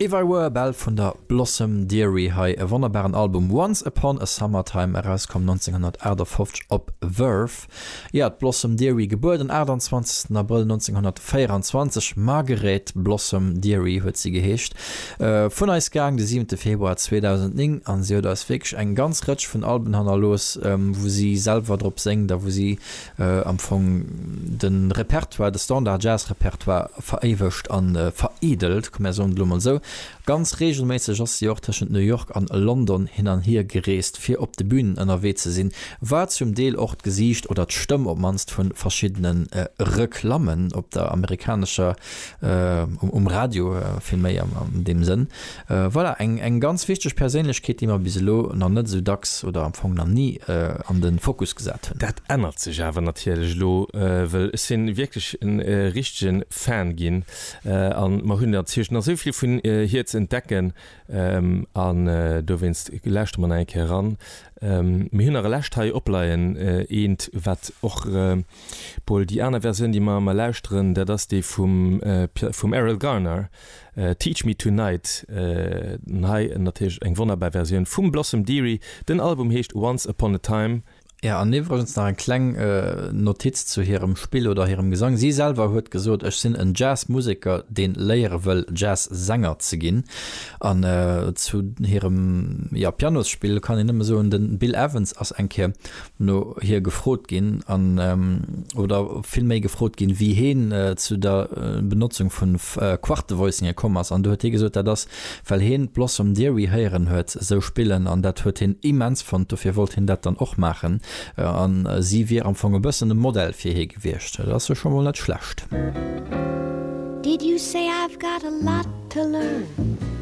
If I Were a Bell vun der Blossom Dearie, hei e wonnerbaren Album Once Upon a Summertime, erauskomm 1958 op Verve. Jo, d'Blossom Dearie, gebuer den 28 Abrëll 1924, Margaret Blossom Dearie huet si geheescht, vun eis gaang de siwente Februar 2009 a si huet eis wierklech eng ganz Rëtsch vun Alben hannerlooss, wou si selwer drop séngt a wou si am Fong de Repertoire, de Standard-Jazz-Repertoire veréiwegt a veredelt, komm mär soen et elo mol esou. Ganz reegelméisseg ass si och tëschent New York an London hin an hier gereest, fir op de Bünen ënnerwee ze sinn, war zum Deel och d'Gesiicht oder d'Stëmm op d'mannst vu verschiddene Reklammen op der amerikanescher, um Radio vill méi an deem Sënn. Voilà, eng ganz wichteg Perséinlechkeet, déi mer bis elo nach net esou dacks oder am Fong nach ni an de Fokus gesat hunn. Dat ännert sech awer natierlech elo, wëll ech sinn wierklech e richtege Fan ginn a mer hunn an Zuerich nach esou vill vun hir ze entdecken an dowéinst lauschte mer nach eng Kéier eran. Mir hunn nach e lescht hei opleien, eent wat och bol, déi aner Versioun déi mer ëmmer lauschteren, dat ass déi vum Erroll Garner. Teach Me Tonight, an hei natierlech eng wonnerbar Versioun vum Blossom Dearie. Den Album heescht Once Upon a Time. Jo, an iwwregens nach eng kleng Notiz zu hirem Spill oder hirem Gesang, si selwer huet gesot, Ech sinn en Jazz-Museker, deen léiere wëll Jazz-Sänger ze ginn. An zu hirem, jo, Pianosspill kann een nëmme soen, den Bill Evans ass eng Kéier no hir gefrot ginn an oder vill méi gefrot ginn, wéi hien zu der Benotzung vu Quartevoicinge komm ass. An do huet hie gesot, dat ass, well hien d'Blossom Dearie héieren huet sou spillen an dat huet hien immens fonnt, dofir wollt hien dat dann och maachen an si wier am Fong e bëssen e Modell fir hie gewiescht. Dat ass jo scho mol net schlecht. Did you say I've got a lot to learn?